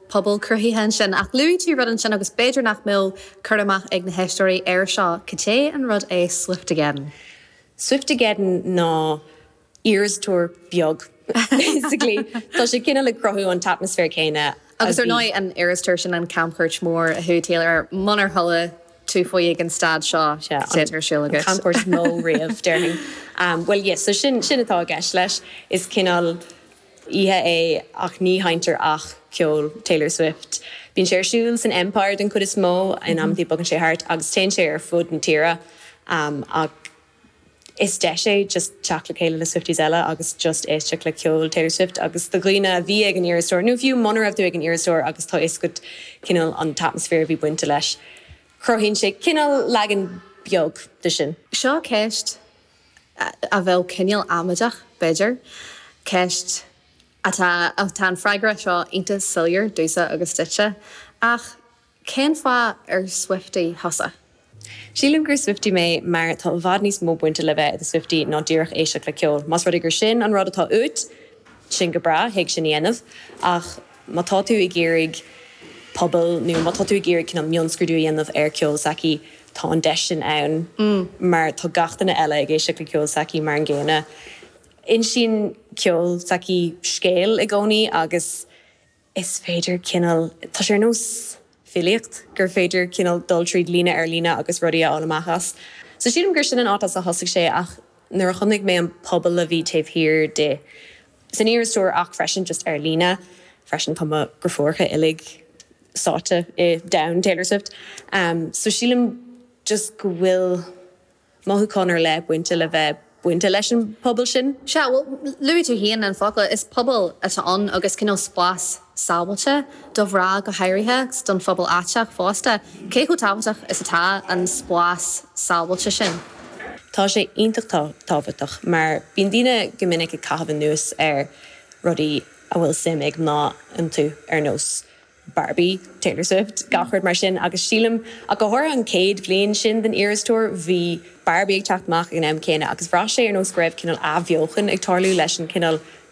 pobail cruthaithe ansin, ach luaigh tú rud ansin agus b'fhéidir nach mbeadh cur amach ag na héisteoirí air seo, caidé an rud é Swiftogeddon? Swiftogeddon ná Eras Tour beag sa gclaí. Tá sé cineál ag cruthú an t-atmaisféar céanna a bhí. Agus ar ndóigh an Eras Tour sin an camchuairt mhór a chuaigh Taylor air, munar chuala tú faoi ag an staid seo, caidé atá ar siúl agat? An camchuairt is mó riamh, déarfainn. Bhuel, yes, so sin atá i gceist leis. Is cineál. oíche é ach ní sheinntear ach ceol Taylor Swift. Bíonn sé ar siúl san Empire den chuid is mó in amantaí bogann sé thart agus téann sé ar fud na tíre ach is deis é just teacht le chéile le Swifties eile agus just éisteacht le ceol Taylor Swift agus do dhaoine a bhí ag an Eras Tour nó fiú muna raibh tú ag an Eras Tour agus tá fhios agat cineál an t-atmaisféar a bhí bainte leis cruthaíonn sé cineál leagan beag de sin. Seo ceist a bheadh cineál amaideach, b'fhéidir. Ceist atá Tá an freagra seo iontach soiléir domhsa agus duitse, ach cén fáth ar Swiftie thusa? Sílim gur Swiftie mé mar tá i bhfad níos mó bainte le bheith i do Swiftie ná díreach éisteacht le ceol. Más rud é gur sin an rud atá uait, sin go breá, thig sin a dhéanamh, ach. má tá tú ag iarraidh pobail nó má tá tú ag iarraidh cineál mionscrúdú a dhéanamh ar ceol s'aici, tá an deis sin ann mar tá gach duine eile ag éisteacht le ceol s'aici mar an gcéanna. Insíonn ceol s'aici scéal i gcónaí agus is féidir cineál, tá sé ar nós filíocht gur féidir cineál dul tríd líne ar líne agus rudaí a fháil amach as. So sílim gur sin an áit as a thosaigh sé ach nuair a chonaic mé an pobal a bhí taobh thiar di, san Eras Tour ach freisin just ar líne freisin tá mo dheirfiúracha uilig sáite i domhan Taylor Swift so sílim just go bhfuil mothúchán ar leith bainte le bheith bainte leis an pobal sin. Sea, bhuel, luaigh tú féin an focal, is pobal atá ann agus cineál spás. sábháilte, do mhná go háirithe, agus don phobal aiteach fosta, cé chomh tábhachtach is atá an spás sábháilte sin. Tá sé iontach tábhachtach mar bíonn daoine go minic ag caitheamh anuas ar rudaí a bhfuil suim ag mná iontu, ar nós Barbie, Taylor Swift, gach rud mar sin, agus sílim, ach go háirithe an chéad bhliain sin den Eras Tour, bhí Barbie ag teacht amach ag an am céanna agus bhraith sé ar nós go raibh cineál athbheochan ag tarlú leis an chineál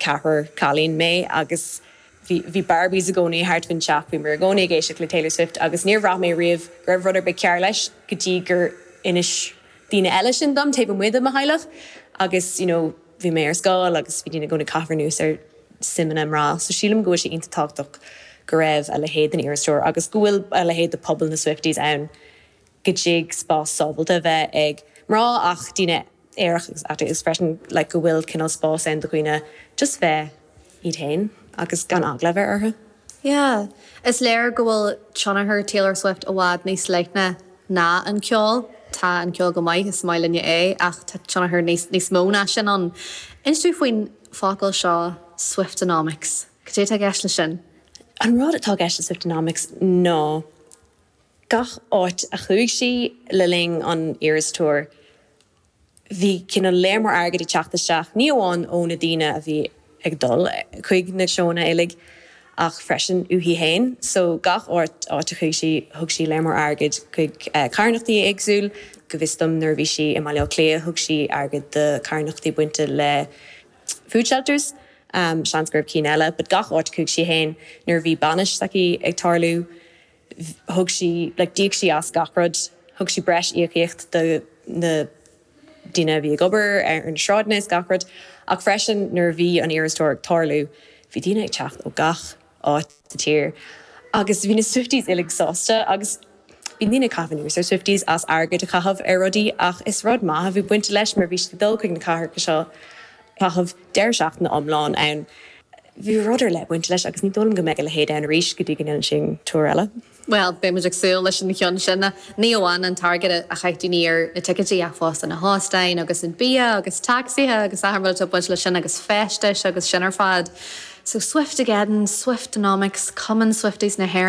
Ceathrar cailín mé agus bhí bhí Barbies i gcónaí thart faoin teach, bhí muid i gcónaí ag éisteacht le Taylor Swift agus níor bhraith mé riamh go raibh rud ar bith cearr leis go dtí gur inis daoine eile sin dom taobh amuigh de mo theaghlach agus you know bhí mé ar scoil agus bhí daoine i gcónaí ag caitheamh anuas ar suimeanna mná so sílim go bhfuil sé iontach tábhachtach go raibh a leithéid den Eras Tour agus go bhfuil a leithéid de pobal na Swifties ann. go dtug spás sábháilte a bheith ag mná ach daoine aerach agus agus freisin like go bhfuil cineál spás ann do dhaoine just bheith iad féin agus gan eagla a bheith orthu yeah. Is léir go bhfuil tionchar Taylor Swift i bhfad níos leithne ná an ceol. Tá an ceol go maith, is maith linne é, ach tá tionchar níos níos mó ná sin ann. Inis dúinn faoin focal seo Swiftonomics. Cad é atá i gceist leis sin? An rud atá i gceist le Swiftonomics ná. Gach áit a chuaigh sí le linn an Eras Tour bhí cineál lear mór airgid ag teacht isteach, ní amháin ó na daoine a bhí ag dul chuig na seóanna uilig ach freisin uaithi féin. So gach áit áit a chuaigh sí, thug sí lear mór airgid chuig carthanachtaí éagsúil. Go bhfios dom nuair a bhí sí i mBaile Átha Cliath thug sí airgead do carthanachtaí bainte le food shelters, seans go raibh cinn eile but gach áit a chuaigh sí féin nuair a bhí bainis s'aici ag tarlú, thug sí, like d'íoc sí as gach rud, thug sí breis íocaíocht do na daoine a bhí ag obair ar na sráideanna is gach rud ach freisin nuair a bhí an Eras Tour ag tarlú bhí daoine ag teacht ó gach áit sa tír agus bhí na Swifties uilig sásta agus bhí daoine ag caitheamh anuas ar Swifties as airgead a chaitheamh ar rudaí ach is rud maith a bhí bainte leis mar bhí siad ag dul chuig na cathracha seo caitheamh deireadh seachtaine iomlán ann. Bhí rud ar leith ag baint leis agus ní dóigh liom go mbeidh a leithéid ann arís go dtí go ndéanann sí tour eile. Bhuel, beidh muid ag súil leis an gceann sin. Ní amháin an t-airgead a chaith daoine ar na ticeidí ach fosta na hóstáin agus an bia agus tacsaithe agus achan rud ag baint leis sin agus feistis agus sin ar fad. So Swiftegeddon, Swiftonomics, Cumann Swifties na hÉireann.